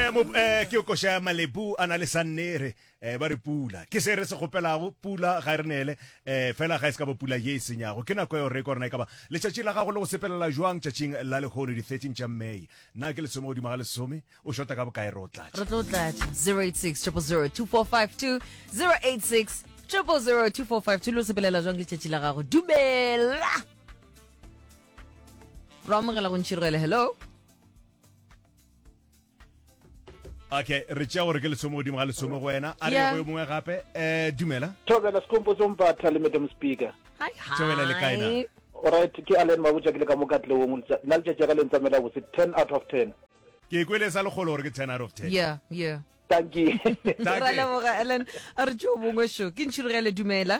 Eh, mo, eh, ke koša ya malepu a na le sannere eh, ba re pula ke se re se kgopelago pula ga e re neele eh, fela ga e se ka ba pula ye e senyago ke nako eo re ko rena e ka ba letšatši la gago le go sepelela jwang tšatšing la lehono di-13 tša may na ke lesome godimo ga lesome o shota ka bokae re o tlatša re tlo tlatša 086 0002452 086 0002452 lo sepelela jwang letšatši la gago dumela ro amogela go ntšhirogele hello okay re tšea gore ke lesome godimo ga lesome go wena a re go yo mongwe gape um dumela thobela sekompo tsompatha le madam speaker thobela le kaena orit ke alen mabotsa ke le ka mo katleong nna letšatši ya ka le ntsamela botse ten out of ten ke kwele sa lekgolo gore ke ten out of ten yeah yeah tanki ra leboga ellen a re tšeo bongwe sho ke ntšhirogele dumela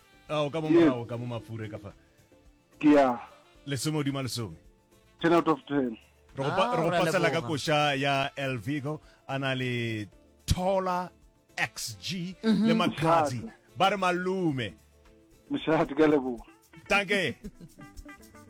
a o ka mo Yes. morago ka mo mafure ka fa ke ya lesome hodima lesome ten out of ten re go pa- Ah, re go re a pasela ka leboga. koša ya el vigo a na le tola xg Mhm. le makhatsi ba re malume mošate ka leboga tanke